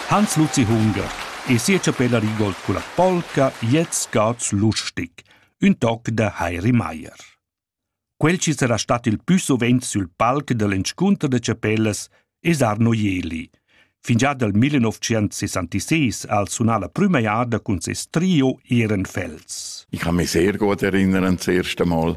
Hans Luzi Hunger e sia chapella rigol culla polca Gliez scaz lustic, ün toc da Heiri Maier. Quel chi sarà stat il pü suvent sül palc da l'inscunter da chapellas es Arno Jeli. Fingià dal 1966 al sunà la prüma jada cun ses trio Ehrenfels. Ich kann mich sehr gut erinnern, das erste Mal,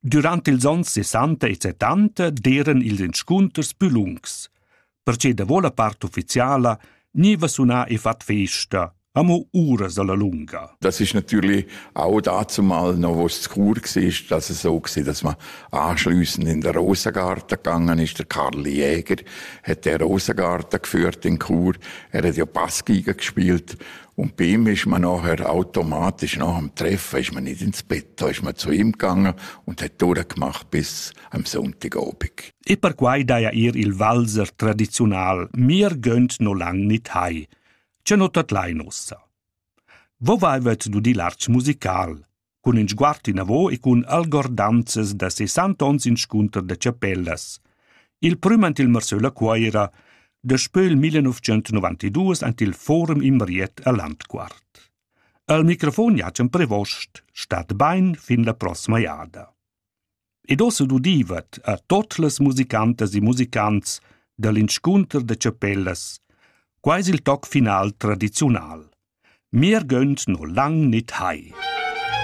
Durant ils onns sessanta e settanta d'eran ils inscunters plü lungs. Perche davo la part ufficiala gniva sunà e fat festa, amo uras alla lunga. Das ist natürlich auch dazu mal noch was zu cool war, dass es so war, dass man anschließend in den Rosengarten gegangen ist. Der Karl Jäger hat den Rosengarten geführt in Chur. Er hat ja Passgeige gespielt Und bei ihm ist man nachher automatisch nach dem Treffen ist man nicht ins Bett, da ist man zu ihm gegangen und hat durchgemacht bis am Sonntagabend. E perquai daja ir il Walser tradiziunal, mir gönnt no lang nit hai. Ce no tot lai nossa. Wo vaivet du di l'arch musical? cun in sguard inavo e cun algordanzas da sessant ons inscunter da chapellas. Il prüm ant il Marsöla Cuoira daspö il 1992 ant il Forum Imriet a Landquart. Al microfon Jacem Prevost stat bain fin la prossima jada. Ed ossa dudivat a tot las musicantas e musicants dall'inscunter da chapellas, quais il toc final tradiziunal. Mir gönnt no lang nit hai.